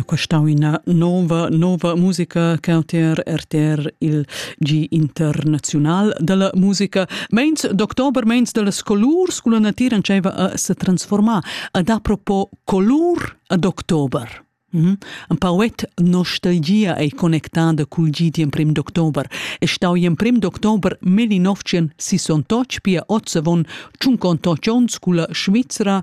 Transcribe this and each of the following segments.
Questa è una nuova, nuova musica che RTR, RTR il G internazional della musica. Meins d'october, meins delle colors, con la natura a se transformar ad apropos color ad october. Mm Ein pauet nostalgia ei connectada cul git in prim d'october. E stau in prim d'october meli novcien 68 pia ozzavon 58 onns culla Svizzera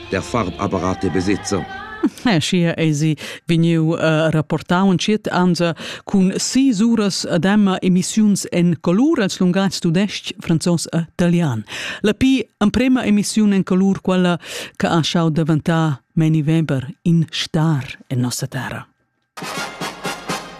der Farbapparat e besitzer. Schia esi vegniu uh, rapportau un ciet ansa cun si uras ad emma emissiuns en colur als lungatgs tudesc, franzos e italian. La pi emprema emissiun en colur quella che ha schau daventar meni Weber in star en nossa terra.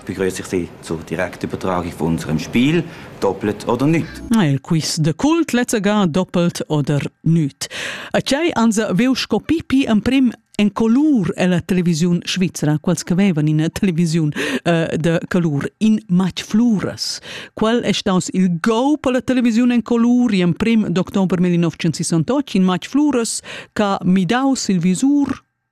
begrüße ich Sie zur direkten Übertragung von unserem Spiel Doppelt oder nicht. Il quiz de cult lezzega doppelt oder nicht. A tgei ansa veu sco pipi emprim en colur ella televisiun svizra, quals che vevan in televisiun uh, de colur, in match fluras. Qual è staus il go per la televisiun en colur in prim d'october 1968 in match fluras che midau il visur